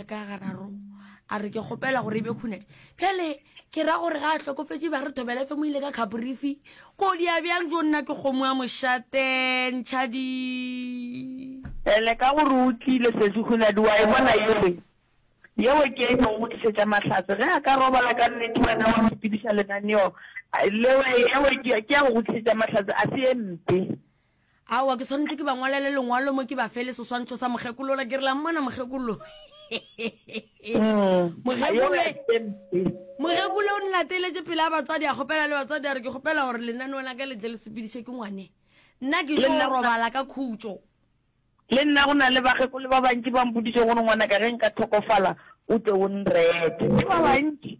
ka gararo a re ke kgopela gore e be khunadi pele ke ra gore ga a tlhokofetse ba re thobela fe mo ile ka khabrifi ko di a bjang jo nna ke kgomo ya mošate ntšhadi ele ka gore o tlile sesi khunadi wa e bona yele yeo ke e neng go tlisetša mahlatse ge a ka robala ka nnete wena wa sepediša lenaneo leo yeo ke ya go tlisetša mahlatse a se e mpe Aowa, ke swanetše ke ba ngwalele lengwalo mo ke ba fe le seswantšho sa mokgekolo ola, ke re la mmona mokgekolo. Mm. Mokgekolo e- mokgekolo o nlateletše pele a batswadi a kgopela le batswadi a re ke kgopela gore lenaneo la ka le tle le sepediše ke ngwane nna ke Le tlo nna o na- robala ka khutšo le nna go na le bakgekolo ba bantši ba mpotšiše gore ngwanaka ge nka tlhokofala o tle o nrete ke ba bantši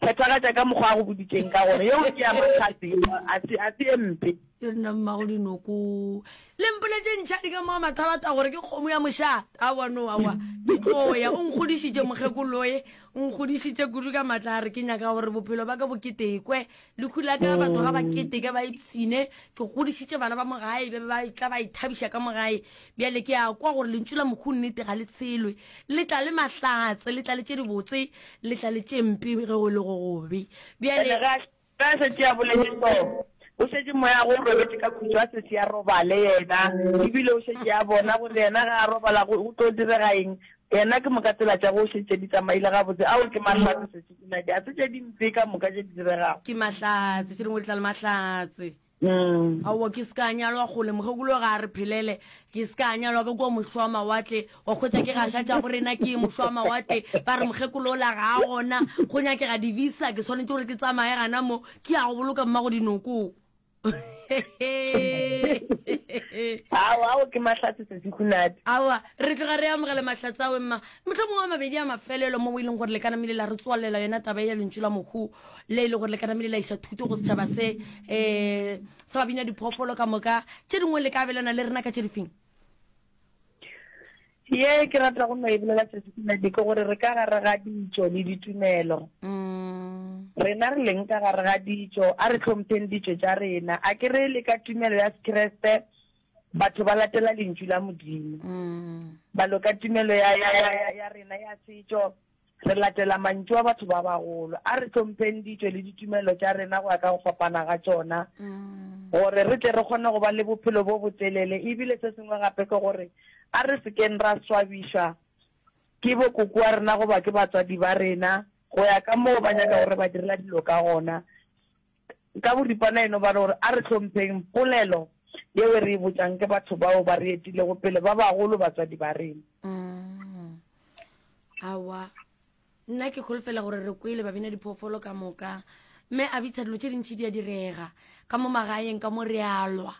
Phethagatša ka mokgwa a go boditšeng ka gona. Yeo ke ya mahlatse yeo, a se, a se ye mpe. Yo nna mmago dinoko. Le mpoletse ntšhadi ka mo a mathalata gore ke kgomo ya mošate. Aowa, no, aowa. Ke tlo ya. O nkgodišitše, mokgekoloye. O nkgodišitše kudu ka matla a re ke nyaka gore bophelo baka bo ketekwe. Lehu la ka batho ga ba keteke ba ipshine. Ke godišitše bana ba mo gae, ba be ba tla ba ithabiša ka mo gae. Bjale ke a kwa gore lentšu la Mohu nnete ga le tshelwe. Le tla le mahlatse, le tla le tše dibotse, le tla le tše mpe ge go le go gobe. Bjale. Bjale, ge a, ge a šetše a boletše seo, go šetše Moya go robetše ka khutšo a se se a robale Yena, e bile o šetše a bona gore Yena ge a robala go, go tlo direga eng. Yena, ke moka tsela tša go šetše di tsamaile gabotse. Ao, ke mahlatse sešo, ke nake. Ga se tše dimpe ka moka tše di diregago. Ke mahlatse, tše dingwe di tla le mahlatse. Mm. aowa ke se ka nyalwa kgole mokgekolo ga a re phelele ke se ka nyalwa ka kua mošo wa mawatle wa kgwetsa ke gaša tša borena ke mošo wa mawatle ba re mokgekolo o la ga a gona go nyakega divisa ke tshwanetse gore ke tsamaye gana mo ke ya go boloka mmago dinoko ao ao ke mahlatse sesikhunate aowa re tloga re amogele mahlatsawe mma motlho mongwe wa mabedi a mafelelo mo o e leng gore le ka namile la re tswalela yona taba ya lentšu la mokgoo le e le gore le ka namele la isa thuto go setšhaba se um sa babina diphoofolo ka moka tše dingwe le ka abelana le rena ka tše difeng ye ke rata go no e bolela tšatšitsinadi ke gore re ka gare ga ditso le ditumelo mm. rena re leng ka gare ga ditso a re tlhompheng ditso tša rena a ke re le ka tumelo ya sekeresete batho ba latela lentšu la modimo mm. balo ka tumelo ya rena ya setso Re latela mantšu a batho ba bagolo. A re hlompheng ditšo le ditumelo tša rena go ya ka go fapana ga tšona gore re tle re kgone go ba le bophelo bo botelele. E bile se sengwe gape ke gore a re se keng ra swabišwa ke bokoko wa rena goba ke batswadi ba rena go ya ka moo ba nyakago re ba direla dilo ka gona. Ka boripana e no ba re gore a re hlompheng polelo yeo e re e botšang ke batho bao ba re etilego pele, ba bagolo, batswadi ba rena. Aowa, nna ke kholofela gore re kwele babina diphoofolo ka moka. Mme a bitsa dilo tše dintši di a direga ka mo magaeng ka mo, re a lwa.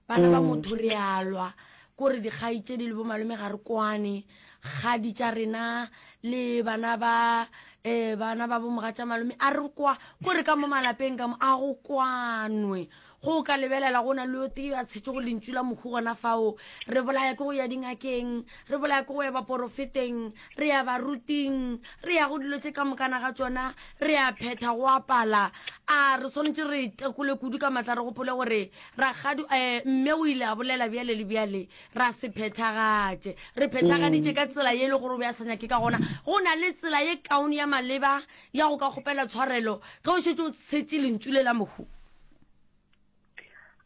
bana ba mm. motho re alwa kore dikgai tse di le bomalome ga re kwane kgadi tša rena le bana ba um bana ba bomoga tša malome a re kwa kore ka mo malapeng ka mo a go kwanwe go ka lebelela go na le yo tee a tshetse go lentsu la mokhu gona fao re bolaya ke go ya dingakeng re bolaya ke go ya baporofeteng re ya baruting re ya go dilo tše ka mokana ga tsona re ya phetha go apala a re tshwanetse re tekole kudu ka matla re gopole gore ragadu um eh, mme o ile a bolela bjale le bjale ra se phethagatše re phethagaditše ka tsela ye e le gore o be a sa nyake ka gona go na le tsela ye kaone ya maleba ya go ka kgopela tshwarelo ge o šetse o tshetše lentsu le la mohu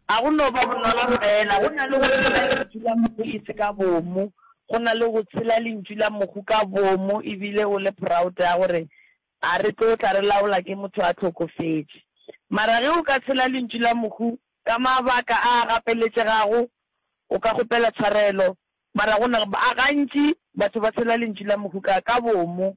A go no ba bonolo feela go na le go tshela Lentšu la Mohu e se ka bomo, go na le go tshela Lentšu la Mohu ka bomo e bile o le proud ya gore, A re tlo tla re laola ke motho a hlokofetše. Mara ge o ka tshela Lentšu la Mohu ka mabaka a a gapeletšegago, o ka kgopela tshwarelo. Mara go na, gantši batho ba tshela Lentšu la Mohu ka, ka bomo.